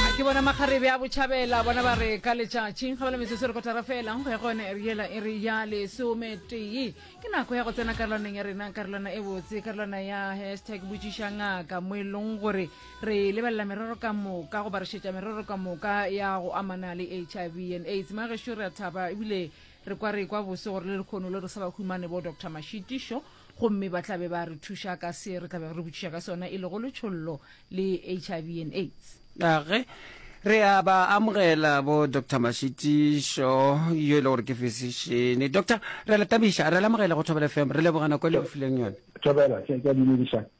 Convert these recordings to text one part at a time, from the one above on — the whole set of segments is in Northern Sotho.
ke bona makgarebe a botšhabela bona ba re ka letšatšing ga bala metsotso re kotara fela go ya go yone ere yela e re ya lesometee ke nako ya go tsena karolwaneng ya rena karolwana e botse karolwana ya hashtag botšiša ngaka mo e leng gore re lebelela merero ka moka go barišetša merero ka moka ya go amana le h i v and aids magešo re a thaba ebile re kwa re kwa bose gore le lekgono le re sa ba humane bo doctor mashitišo gomme ba tla be ba re thuša ka se re tla be re botšiša ka sona e lego letšhollo le hiv and aids age re a ba amogela bo dr mashitišo yo e le gore ke physician doctor re le tabiša re le amogele go thobela fm re lebogana ko le re fileng yone thobela ke a dumedišana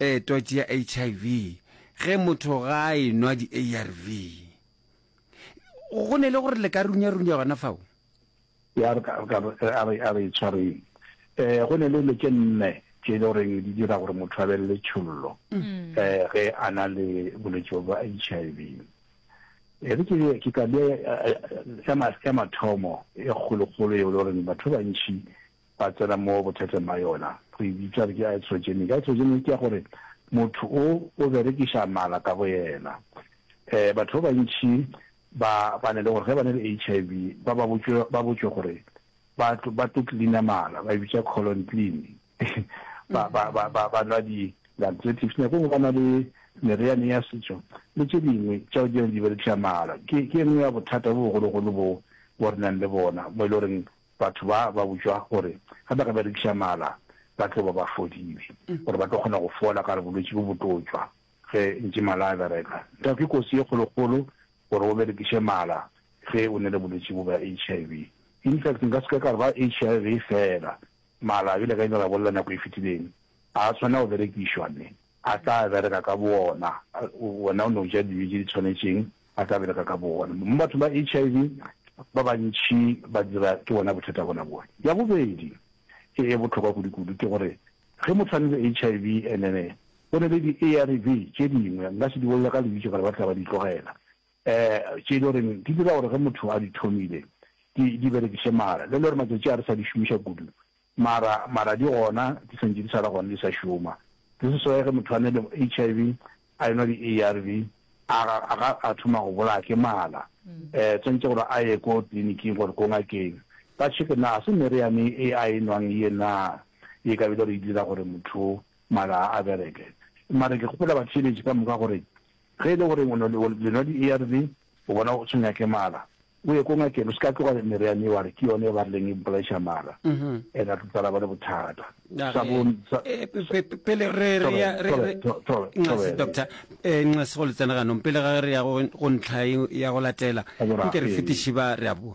Ee, twatši ya HIV, ge motho ga a e nwa di-ARV. Go ne le gore le ka runyarunya gona fao? Ya, re ka, re ka, a re, a re e tshwareng. Um, go ne le dilo tše nne tše e le goreng di dira gore motho a be le letšhollo um ge a na le bolwetši bjo bja HIV. E re ke, ke ka bea ya, ya, ya mathomo e kgolokgolo yeo e le goreng batho ba bantši ba tsena mo bothateng ba yona. Re e bitsa re ke iatrogenic. Iatrogenic ke ya gore motho o o berekiša mala ka boyena. Um batho ba bantši ba ba ne le gore ge ba ne le HIV ba ba botšwe ba botšwe gore ba tlo ba tlo cleaner mala ba e bitsa colon clean ba ba ba ba ba nwa di laxatives nako nngwe ba na le meriane ya setso le tše dingwe tšeo di di berekiša mala ke ke nngwe ya bothata bo bogologolo bo bo re nang le bona mo e le goreng Batho ba ba botšwa gore ge ba ka berekiša mala ba tlo ba ba fodile, gore ba tlo kgona go fola ka re bolwetši bo bo tlo tšwa ge ntše mala a bereka. Nthwa ke kotsi ye kgolokgolo gore o berekiše mala ge o nele bolwetši bo bja HIV. In fact, nka se ka ka re ba HIV fela, mala bjale ka ile ra bolela nako e fetileng, a a tshwanela go berekišwa ne. a tla bereka ka boona, wena o ne o ja dijo tše di tshwanetšeng, a tla bereka ka boona. Mo bathong ba HIV, ba bantši ba dira ke bona bothata bona boo. Ya bobedi e e bohlokwa kudukudu ke gore ge motho a na le HIV and then go na le di-ARV tše dingwe, nka se di bolele ka lebitso gore ba tla ba di tlogela, um tše e le goreng di dira gore ge motho a di thomile di di berekiše mara le le gore matšatši a re sa di šomiša kudu, Mara, mara di gona, di sentše di sa le gona, di sa šoma. This is why ge motho a na le HIV, a enwa di-ARV, a ga, a ga a thoma go bolaya ke mala. Eh, tswantše gore a ye ko tliliniking gore ko ngakeng, ba check-e na ga se meriane e a e nwang ye na, ye ka bile re e dira gore motho mala a bereke. Mara ke gopola batheeletši ka moka gore ge e le gore o nwa, le nwa di-ARV, O bona, o se nyake mala. O ye ko ngakeng, o se ka tloga meriane yeo a re ke yone e ba rileng e mpolaiša mala, ene a tlo tsala ba le bothata. Sa bo, sa, pele re re ya re re nxase doctor eh nxase go le tsena ganong pele ga re ya go ntlha ya go latela nke re fetiše ba re a boa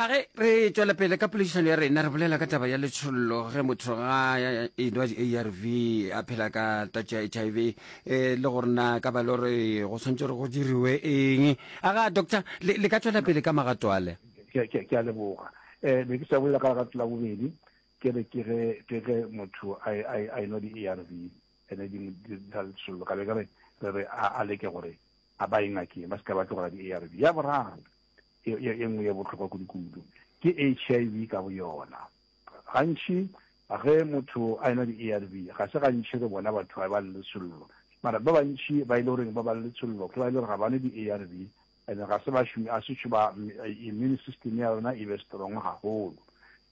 a ge re tšwela pele ka poledišano ya rena re bolela ka taba ya letšhollo ge motho ga enwa di-arv a phela ka tatso ya h i v eh, le gore na ka ba le gore go tshwanetse gore go diriwe eng a ga doctor le ka tšwela pele ka magato ale ke a leboga um ne ke sa bolela ka lerato la bobedi ke re ke ge motho a enwa di-arv ene di tsa letšhollo ka be ke re re re a leke gore a ba e ngakeng ba se ka ba tlogela di-arv ya boraro e nngwe ya bohlokwa kudu-kudu ke HIV ka bo yona. Gantši ge motho a enwa di-ARV, ga se gantši re bona batho ba ba le letshollo. Mara ba bantši ba e le goreng ba ba le letshollo ke ba e le gore ga ba nwe di-ARV and ga se bašomi a setšho ba immune system ya rona e be strong gagolo.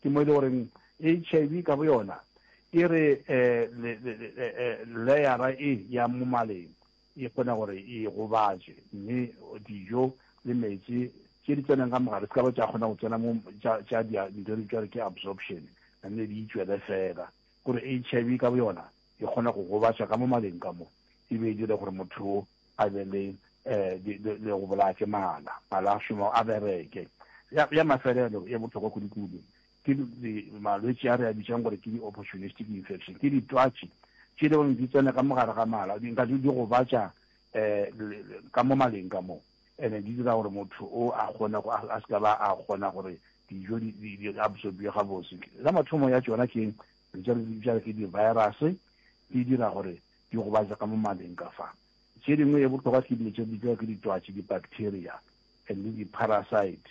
Ke mo e le goreng HIV ka bo yona e re um leyara e ya mo maleng e kgone gore e e gobatše, mme dijo le meetse tše di tseneng ka mogare se ka ba tša kgona go tsena mo tša tša dia nto di tšware ke absorption mme di itšwele fela gore HIV ka boyona e kgona go gobatša ka mo maleng ka mo e be e dire gore motho o a be le eh le go bolaya ke mala mala a šoma a bereke ya mafelelo e botlhokwa kudu-kudu Ke di, malwetši a re a bitšang gore ke di-opportunistic infection. Ke ditwatši tše le gore di tsena ka mo gare ga mala, di nka di gobatša um ka mo maleng ka mo, and-e di dira gore motho o a kgone go, a se ka ba a kgona gore dijo di, di, di absorbiwe gabotse. Ya mathomo ya tšona ke eng? Re tša re di bitša ke di-virus, di dira gore di gobatša ka mo maleng ka fa. Tše dingwe e bohlokwa ke dilo tše di bitšwa ke ditwatši, di-bacteria and le di-parasite.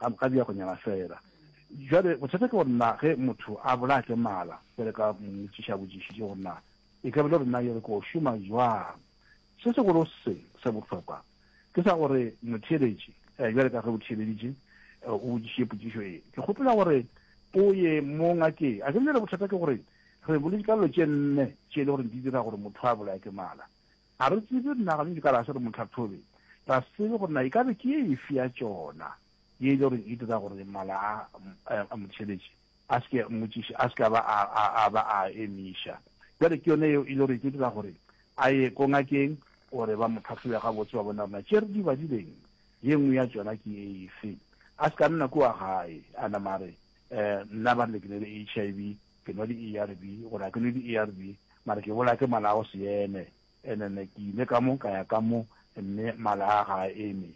gabjako nyana fela. Jwale bothata ke gore na ge motho a bolaya ke mala, jwale ka mo motšiša botšišiši gore na e ka bile gore na yere ko šoma jwang. Se segolo se se bohlokwa ke sa gore motheeletši, eh, jwale ka ge o theeleditše, eh, o botšišiše potšišo e, ke kgopela gore o ye mo ngakeng. A ke bile bothata ke gore re boletše ka dilo tše nne tše e le gore di dira gore motho a bolaya ke mala. Ga re tsebe nna ga nke ka ra se re mo tlhathobe, ra se tsebe gore na e ka be ke ye efe ya tšona ye e le goreng e dira gore mala a a mo theletše a se ke a mmotšiša, a se ke a ba a a ba a a emiša. Bjale ke yona yeo e le gore e tlo dira gore a ye ko ngakeng gore ba mo tlhathobe gabotse ba bone gore na tše re di badileng ye nngwe ya tšona ke ye efe. A se ke a nna kua gae a nama a re, Nna ba re le ke na le HIV. Ke nwa di ARV gore a ke nwe di ARV mara ke bolaya ke mala a go se eme and then ke ile ka mo ka ya ka mo mme mala a ga a eme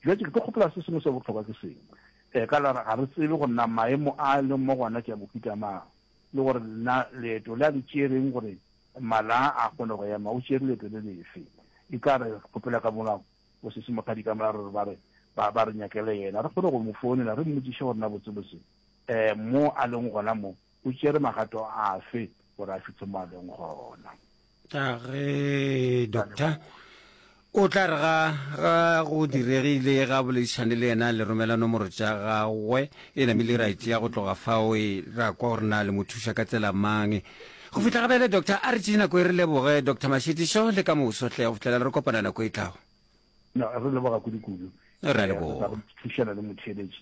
jwa ke tlo kgopela se sengwe se botlhokwa ke seng eh ka lara ga re tsebe go nna maemo a leng mo gona ke ya mofuta mang le gore nna leeto le a le tšereng gore mala a kgone go ema o tšere leeto le lefe e ka re kgopela ka mona o se se mothadi ka mora re ba re ba re nyakele yena re kgone go mo founela re mmotsiše gore na botsebotse Mo a leng gona mo, o tšere magato afe gore a fitlhe mo a leng gona? Age, doctor. O tla re ga, ga go diregile ga boledišane le yena le romela nomoro tša gagwe, e namile ra e tšea go tloga fao e ra kwa gore na le mo thuša ka tsela mang. Go fihla gabjale, doctor, a re tšee nako e re leboge, Doctor Mashetišo, le ka moso hle, go fihlela re kopana nako e tlago. No, re leboga kudu-kudu. Re a leboga. Thušana le motheeletši.